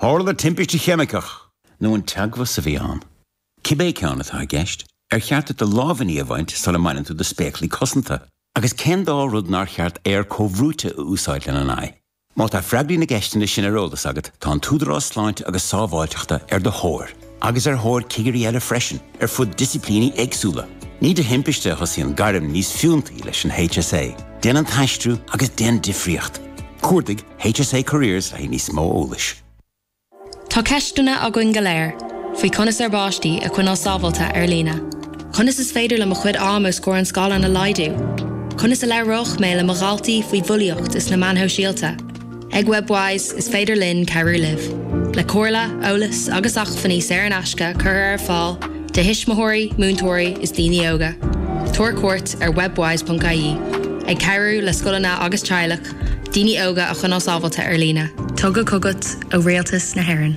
Tharla timpiste cheimiceach, nó an teagmhas a bhí ann, cibé ceann atá i gceist, ar cheart duit do lámhainní a bhaint sula mbaineann tú do spéaclaí cosanta? Agus cén dá rud nár cheart aer comhbhrúite a úsáid lena n-aghaidh? Má tá freagraí na gceisteanna sin ar eolas agat, tá an tÚdarás Sláinte agus Sábháilteachta ar do thóir. agus ar thóir cigirí eile freisin ar fud disciplíní éagsúla. Ní de thimpiste a thosaíonn gairm níos fiúntaí leis an HSA, Déan an tAistriú agus Déan Difríocht. Cuardaigh HSA Careers le haghaidh níos mó eolais. Tá ceisteanna againn go léir faoi conas ár bpáistí a choinneáil sábháilte ar líne. Conas is féidir liom mo chuid ama os comhair an scáileáin a laghdú? Conas a labhróidh mé le mo dhaltaí faoi bhulaíocht is na meáin shóisialta? Ag Webwise is féidir linn cabhrú libh le comhairle, eolas agus acmhainní saor in aisce curtha ar fáil do thuismitheoirí, múinteoirí is daoine óga. Tabhair cuairt ar webwise.ie ag cabhrú le scoileanna agus teaghlach daoine óga a choinneáil sábháilte ar líne. Tugtha chugat ó Rialtas na hÉireann.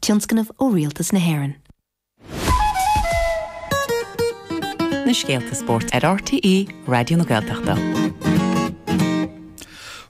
tionscnamh ó Rialtas na hÉireann. na scéalta spóirt ar RTÉ Raidió na Gaeltachta.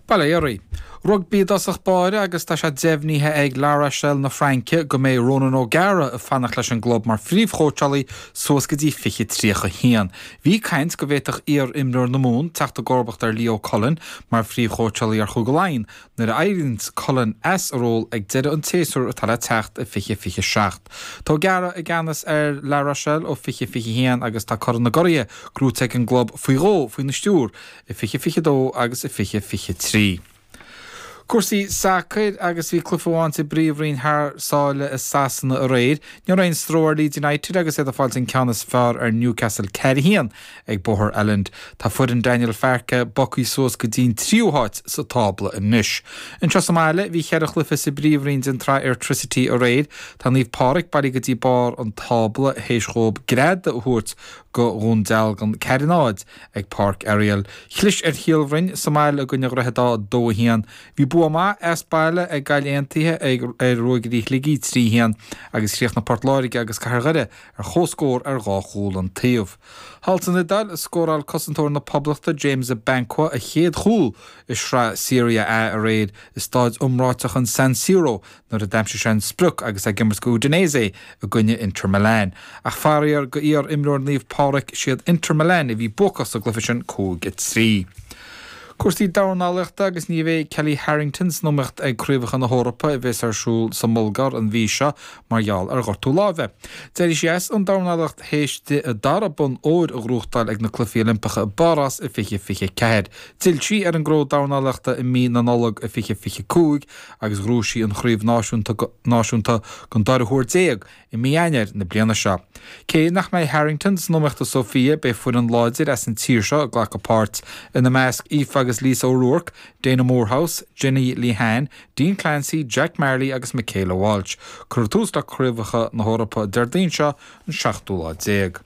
Bail ó Dhia oraibh. Rugbaí i dtosach báire agus tá sé deimhnithe ag La Rochelle na Fraince go mbeidh Ronan O'Gara ag fanacht leis an gclub mar phríomhchóitseálaí suas go dtí 2031. Bhí caint go bhféadfadh iar-imreoir na Mumhan teacht i gcomharbacht ar Leo Cullen mar phríomhchóitseálaí ar Chúige Laighean Nuair a éiríonn Cullen as a ról ag deireadh an tséasúir atá le teacht i 2027, tá O'Gara i gceannas ar La Rochelle ó 2021 agus tá Corn na gCuraithe gnóite ag an gclub faoi dhó faoina stiúir, i 2022 agus i 2023. Cúrsaí sacair, agus bhí cluiche amháin sa bPríomhroinn thar sáile i Sasana aréir. Ní raibh aon stró ar Leeds United agus iad ag fáil an ceann is fearr ar Newcastle, 4-1. Ag Bóthar Elland, tá foireann Daniel Farke bogthaí suas go dtí'n tríú háit sa tábla anois. Anseo sa mbaile, bhí cheithre chluiche sa bpríomhroinn den tsraith Airtricity aréir. Tá Naomh Pádraig bailithe go dtí barr an tábla théis dhóib greadadh a thabhairt go Dhún Dealgan, 4 0 ag Páirc Ariel. Chlis ar Shíol Bhroin sa mbaile i gcoinne Dhroichead Átha, 2 1. Bhí bua maith as baile ag Gaillimh Aontaithe ar Ruagairí Shligigh, 3 1, agus chríochnaigh Port Láirge agus Cathair Dhoire ar chomhscór ar dhá chúl an taobh. Thall san Iodáil a scóráil cosantóir na Poblachta James Abankwah a chéad chúl i sraith Serie A aréir i stáid iomráiteach an San Siro nuair a d'aimsigh sé an sprioc agus é ag imirt go Udinese i gcoinne Inter Milan. Ach faraor go iar-imreoir Naomh Pádraig 'siad Inter Milan a bhí buacach sa gcluiche sin 5 3. Cúrsaí dornálaíochta agus ní bheidh Kellie Harrington san iomaíocht ag Craobhacha na hEorpa a bheas ar siúl sa mBulgáir an mhí seo mar gheall ar ghortú láimhe. D'éirigh sí as an dornálaíocht théis di a dara bonn óir a ghnóthachtáil ag na Cluichí Oilimpeacha i bPárás i 2024. D'fhill sí ar an gcró dornálaíochta i mí na Nollag i 2025 agus ghnóthaigh sí an chraobh náisiúnta náisiúnta don dara huair déag i mí Eanáir na bliana seo. Cé nach mbeidh Harrington san iomaíocht i Sofia, beidh foireann láidir as an tír seo ag glacadh páirt, ina measc Aoife agus Lisa O'Rourke, Daina Moorehouse, Jenny Lehane, Dean Clancy, Jack Marley agus Michaela Walsh. Cuirfear tús le Craobhacha na hEorpa Déardaoin seo an seachtú lá déag.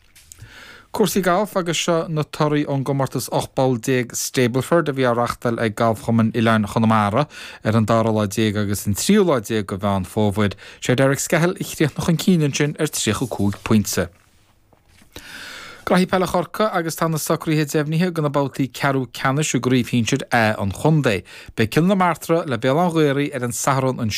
Cúrsaí Gailf agus seo na torthaí ón gcomórtas 18 bpoll Stableford a bhí á reáchtáil ag Galfchumann Oileáin Chonamara ar an dara lá déag agus an tríú lá déag de Mheán Fómhair. Sé Derek Skehill a chríochnaigh chun cinn ansin ar 35 pointe. Cluichí Peile Chorcaí agus tá na socruithe deimhnithe do na babhtaí ceathrú ceannais i gCraobh Shinsir A an chontae. Beidh Cill na Martra le Béal Átha an Ghaorthaidh ar an Satharn an